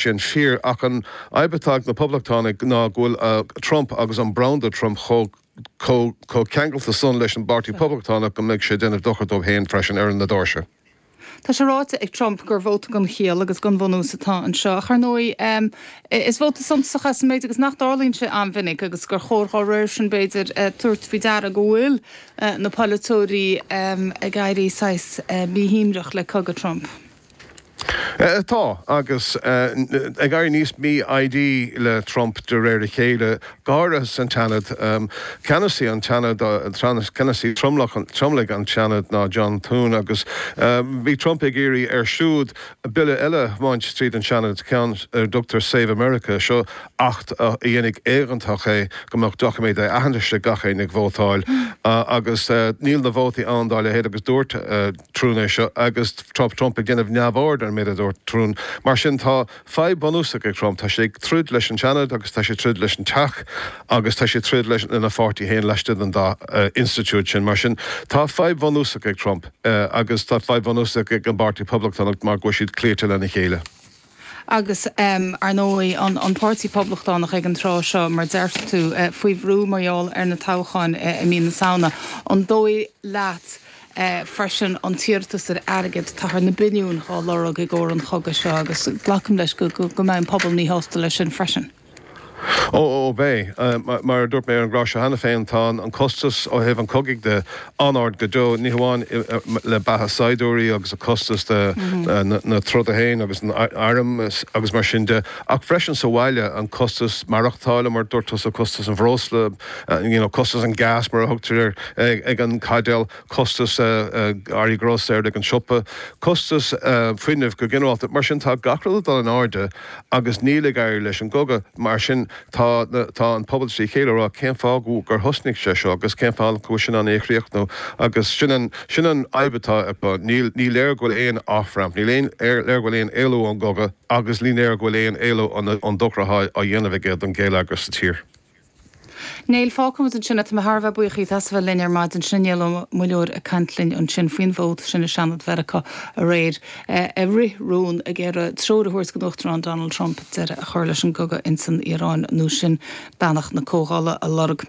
Sin fíor, ach an fhadhb atá ag na Poblachtánaigh ná go bhfuil Trump agus an branda Trump chomh ceangailte san leis an bPáirtí Poblachtánach go mbeidh sé ag déanamh dochair dóibh féin freisin ar na doirse. Tá sé ráite ag Trump gur vóta gan chiall agus gan bhunús atá anseo, ach ar ndóigh is vóta suntasach é sa mhéid agus nach dtarlaíonn sé an-mhinic agus gur chóir dá réir sin, b'fhéidir, tabhairt faoi deara go bhfuil na poiliteoirí ag éirí saghas míshuaimhneach le cogadh Trump. Tá, agus ag éirí níos mí-fhoighdí le Trump de réir a chéile, go háirithe san tSeanad. Ceannasaí an tSeanaid, ceannasaí tromlaigh an tSeanaid ná John Thune, agus bhí Trump ag iarraidh air siúd bille eile a thiomáint tríd an Seanad, ceann ar a dtugtar Save America. Seo acht a dhéanfaidh éigeantach é go mbeadh doiciméad aitheantais ag gach éinne ag vótáil, agus níl na vótaí ann dá leithéid, agus dúirt, Thune é seo agus tá Trump ag déanamh neamhaird ar an méid a dúirt Thune. Mar sin tá fadhb bhunúsach ag Trump, tá sé ag troid leis an Seanad agus tá sé ag troid leis an Teach agus tá sé ag troid leis lena pháirtí féin laistigh den dá institiúid sin. Mar sin tá fadhb bhunúsach ag Trump agus tá fadhb bhunúsach ag an bPáirtí Poblachtánach mar go bhfuil siad cloíte lena chéile. Agus, ar ndóigh, an Páirtí Poblachtánach ag an tráth seo, mar a déarfadh tú, faoi bhrú mar gheall ar na toghcháin i mí na Samhna. An dóigh leat, freisin, an t-iarratas ar airgead, táthar na billiúin dhá lorg i gcóir an chogaidh seo agus glacaim leis go mbeidh an pobal míshásta leis sin freisin. Ó, ó, beidh. Mar a dúirt mé ar an gclár seo cheana féin, tá an costas ó thaobh an chogaidh de an-ard go deo, ní hamháin le beatha saighdiúirí agus a costas na troda féin agus an airm agus mar sin de, ach freisin sa bhaile, an costas maireachtála, mar a dúirt tusa, costas an bhreosla, you know, costas an gas, mar a thugtar air ag an caidéal. costas earraí grósaera ag an siopa, costas fuinnimh go ginearálta. Mar sin tá gach rud ag dul in airde agus níl ag éirí leis an gcogadh. Mar sin tá an pobal trí chéile ag rá cén fáth gur thosnaigh sé seo agus cén fáth nach bhfuil sé in ann é a chríochnú agus sin an fhadhb atá acu. Ní léir go bhfuil aon off ramp, ní léir go bhfuil aon éalú ón gcogadh agus ní léir go bhfuil aon éalú ón dochar atá á dhéanamh aige don gheilleagar sa tír. Bhuel, fágfaidh muid ansin é, tá mé thar a bheith buíoch díot as a bheith linn ar maidin. Sin inné a labhair muilleoir ag caint linn ansin faoin vóta sin i Seanad Mheiriceá aréir, ag rith rún, ag iarraidh treoir a thabhairt don Uachtarán Donald Trump deireadh a chur leis an gcogadh ins an Iaráin, nó sin beannacht na Comhdhála a lorg.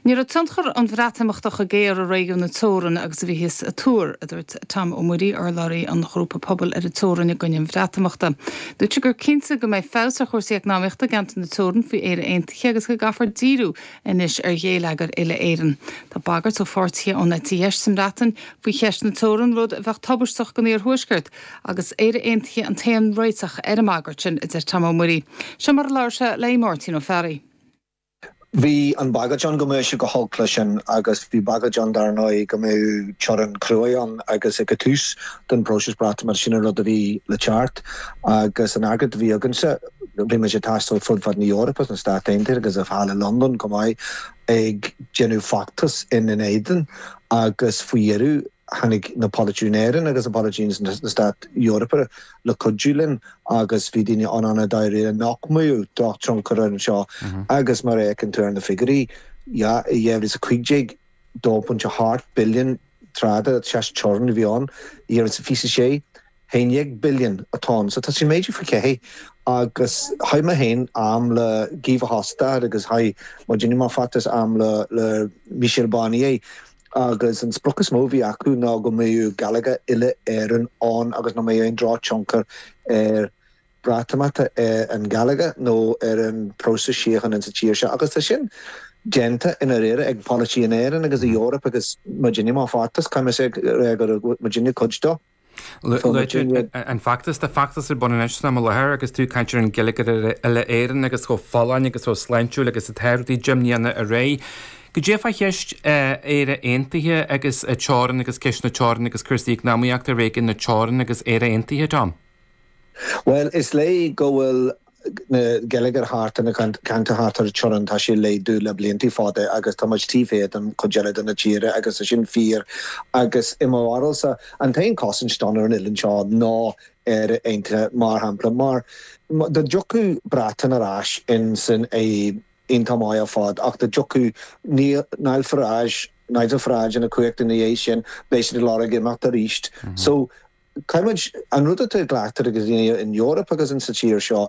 Ní raibh tionchar an Bhreatimeachta cho géar i réigiún na teorann agus a bhíothas ag tuar, a dúirt Tom Ó Muirí, urlabhraí an ghrúpa Pobal ar an Teorainn i gcoinne an Bhreatimeachta. Dúirt sé gur cinnte go mbeidh feabhas ar chúrsaí eacnamaíochta i gceantar na teorann faoi Éire Aon Cé agus go gcaithfear díriú anois ar ghéilleagair uile-Éireann, tá bagairt ó pháirtithe ón eite dheis sa mBreatain faoi cheist na teorann, rud a bheadh tubaisteach don iarthuaisceart, agus Éire Aontaithe an t-aon réiteach ar an mbagairt sin, a deir Tom Ó Muirí. Seo mar a labhair sé le hAodh Máirtín Ó Fearraigh. Bhí an bhagairt ann go mbeadh sé go holc leis sin agus bhí bagairt ann, dar ndóigh, go mbeadh teorainn chruaidh ann agus ag an tús den phróiseas Breatimeachta sin an rud a bhí le teacht agus an fhreagairt a bhí againnse. Bhí muid ag taisteal fud fad na Eorpa, sna Stáit Aontaithe agus thall i Londain chomh maith ag déanamh feachtas ina n-éadan agus faoi dheireadh tháinig na polaiteoirí in Éirinn agus na polaiteoirí sna Stáit Eorpa le cuidiú linn agus bhí daoine ann i ndáiríre nach mbeadh drochthionchar air anseo agus mar a fheiceann tú ar na figiúirí 2015, 2.8 billion trade, trasteorann a bhí ann, 2026. haon déag billion atá ann. So tá sé méadaithe faoi cheathair agus chaith mé féin am le Guy Verhofstadt agus chaith muidne mar feachtas am le le Michel Barnier agus an sprioc is mó a bhí acu ná go mbeadh geilleagar uile-Éireann ann agus nach mbeadh aon drochthionchar ar Breatimeachta ar an geilleagar nó ar an próiseas síochána insa tír seo agus tá sin déanta i ndáiríre ag polaiteoirí in Éirinn agus in Eoraip agus muidne mar feachtas, caithfidh mé a rá go raibh muidne cuid dó. An feachtas, tá feachtas ar bun anois san am i láthair agus tú ag caint ar an gheilleagar uile-Éireann agus chomh folláin agus chomh sláintiúil agus atá rudaí deimhníonna ar aghaidh. Caidé fá cheist Éire Aontaithe agus an teorainn agus ceist na teorann agus cúrsaí eacnamaíochta i réigiún na teorann agus Éire Aontaithe, Tom? Bhuel, is léir go bhfuil na geilleagair thart ar na ceantair thart ar an teorainn, tá sé ag laghdú le blianta fada agus tá muid taobh thiar den chuid eile de na tíre agus tá sin fíor agus i mo bharúilsa an t-aon chosaint dúinn ar an oileán seo ná Éire Aontaithe mar shampla mar dá dtiocfadh Breatain ar ais insan Aontas, maith ar fad ach dá dtiocfadh Nile Farage Nigel Farage chun cumhachta ina dhiaidh sin beidh siad ag lorg imeacht arís so Caithfidh muid an rud atá glactha ag daoine in Eoraip agus insa tír seo